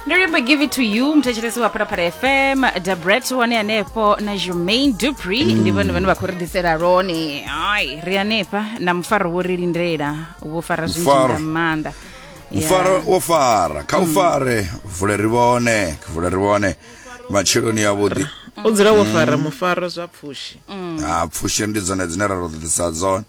ndo limbo give it to you muthetshelesi wa phalaphala fm dabret wane hanefho na germain dupri ndi vhone vhane vha khou ri ḓisela lone ai ri hanefha na mufaro wo ri lindela wo fara zwinzhi Mufaro. nga maanḓa Yeah. mfara wo fara kha u fare vule ri vhone vule ri vhone matsheloni yavhuḓi u dzula wo fara mufaro zwa pfushi ha pfushi ndi dzone dzine ra ro ḓisa dzone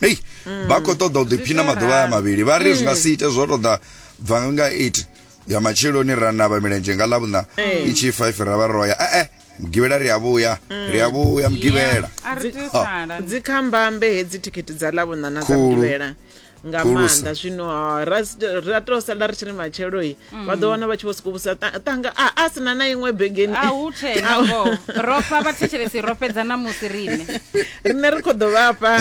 hei vha khou ṱoḓa u ḓiphina maḓuvha aya mavhili vha ri zwi nga si ite zwo tou ḓa bva nga 8 ya matsheloni ra navha milenzhe nga ḽavhuṋa i tshi 5 ra vha ro ya ee mugivhela ri a vhuya ri a vhuya mugivhela a ri tea u Ha. sala dzi kha mbambe hedzi thikhithi dza ḽavhuṋa na dza Khulu. mugivhela nga Khulusa. maanḓa zwino ah, ra s- ra tou sala ri tshi ri matshelo i vha ḓo wana vha tshi vho sokou vhusa "Ta- tanga a a sina na iṅwe begeni a hu tshena ngoho ro fha vhathetshelesi ro fhedza na musi riṋe riṋe ri khou ḓo vhafha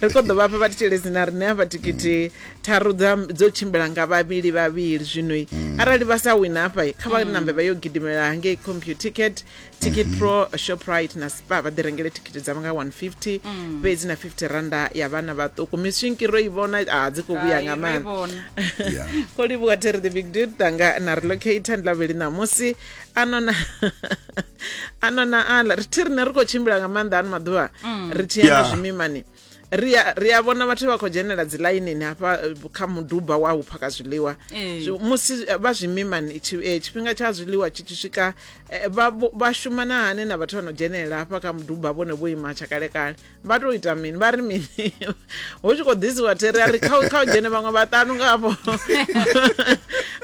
ri khou ḓo vhafha vhathetshelesi na riṋe hafha thikhithi tharu dza dzo tshimbila nga vhavhili vhavhili zwinoi arali vha sa wina hafha kha vha nambe vha yo gidimela hangei computicket ticket mm -hmm. pro shoprite na spa vha ḓi rengele thikhithi dzavho nga 150 mm. fhedzi na 50 randa ya vhana vhaṱuku mishinki ro i vhona a dzi khou vhuya nga maanḓa ko livhuwa terry the big dude tanga na relocator ndi lavheli ṋamusi anona anona ala ri thi rine ri khou tshimbila nga maanḓa ano maḓuvha mm. ri tshi ya na zwimimani ri a- ri a vhona vhathu vha khou dzhenela dzi ḽainini hafha eh, kha muduba wa u phaka zwiḽiwa Ee. Zwi- musi eh, vha zwimimani tshi- eh, tshifhinga tsha zwiḽiwa tshi tshi swika eh, vha vho- vha shumana hani na vhathu vha no dzhenelela hafha kha muduba vhone vho ima tsha kalekale vha tou ita mini vha ri mini hu tshi khou ḓisiwa tere a ri kha u- kha u dzhene vhaṅwe vhaṱanu ngavho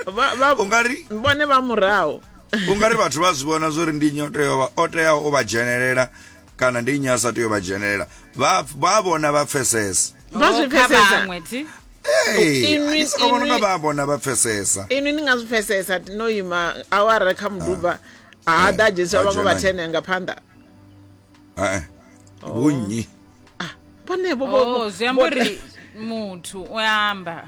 Vha- vha- ungari vhone vha murahu ungari vhathu vha zwi vhona zwori ndi nnyi o teaho vha- o teaho u vha dzhenelela kana ndi nnyi a sa tea u vha dzhenelela vha vha vhona vha pfesesa Vha zwi Oh, kha pfesesa. vhaṅwe, thi. Hey, Inwi- ndi soko vhona inwi- vha vhona vha pfesesa inwi ni nga zwi pfesesa no ima awara kha muduba ha ḓa dzhenisa vhaṅwe vha thene nga phanḓa Eh, vhunnyi vhonevho Oh, zwi amba uri muthu u amba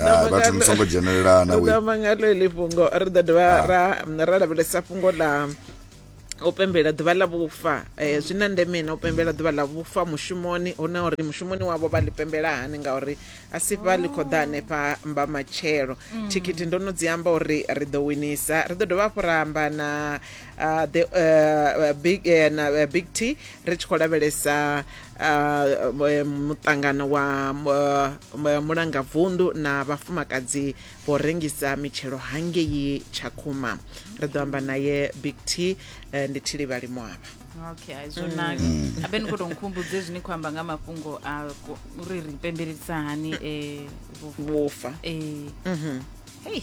ah, vhathu ni songo dzhenelelana ri ḓo mangalo ili fhungo ri ḓo dovha ah. ra ra lavhelesa fhungo ḽa u pembela ḓuvha ḽa vhufa um zwi na ndeme na u pembela ḓuvha ḽa vhufa mushumoni hu na uri mushumoni wavho vha ḽi pembela hani ngauri a si fha ḽi khou ḓa hanefha mba matshelo mm. thikhithi ndo no dzi amba uri ri ḓo winisa ri ḓo dovha hafhu ra amba na ah, the eh, eh, big na big t ri tshi khou lavhelesa uh, muṱangano wa uh, mulangavundu na vhafumakadzi vho rengisa mitshelo hangei tshakhuma ri ḓo amba naye big t uh, ndi thilivhali mwavha okay hai zwo naka mm. abe ni khou tou nkhumbudze zwi ni khou amba nga mafhungo a uri ri pembelelisa hani um vhufa um mm-hmm. hei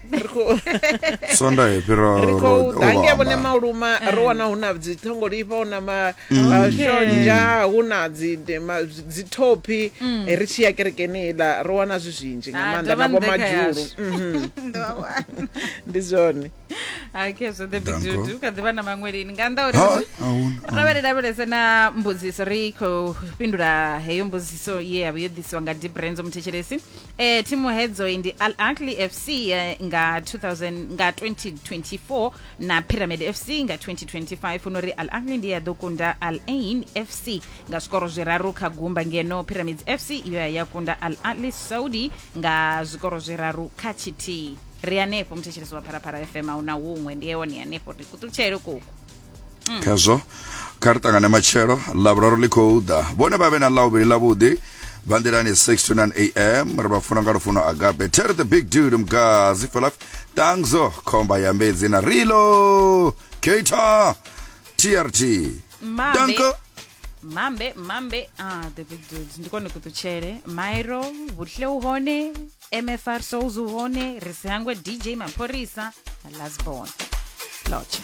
sonda yo fhiraho ri khou ro- ḓa ro ngei vhone amba. maluma ri wana hu na dziṱhongolifha hu na mashonzha hu na dzi- de- ma- dzithophi Eh, ri tshi ya kerekeni iḽa ri wana zwi zwinzhi nga Ah, maanḓa dovha na nṱha vhomadzhulu yashu. ndi zwone ake zwo ḓe Danko. bidudu kha ḓivha na maṅwe lini nga nnḓa uri Ha, musi- ahuna. ro vha ri lavhelese na mbudziso ri khou fhindula heyo mbudziso ye yavha yo ḓisiwa nga dibrenzo muthetshelesi Eh, thimu hedzo ndi Al Ahly FC eh, nga 2000 nga 2024 na Pyramid FC nga 2025 uno ri Al Ahly ndi ya ḓo kunda Al Ain FC nga zwikoro zwiraru kha gumba ngeno Pyramids FC iyo ya ya kunda Al Ahly Saudi nga zwikoro zwiraru kha tshithihi ri hanefho muthetshelesi wa phalaphala fm a hu na huṅwe ndi yewone hanefho ri kuṱutshele kuku mm. khazwo kha ri ṱangane matshelo ḽavhuraru ḽi khou ḓa vhone vha vhe na ḽauvhili ḽavhuḓi vha nḓilani 6 to 9 am ri vha funa nga lufuno agape terry the big dude mgazi felaf tangzo khomba ya mbedzi na rilo kata trt danko mambe mambe ah the big dude ndi kone kuṱutshele mairo vhuhle u hone mfr souls u hone ri sihangwe dj mapholisa lasbon lotsha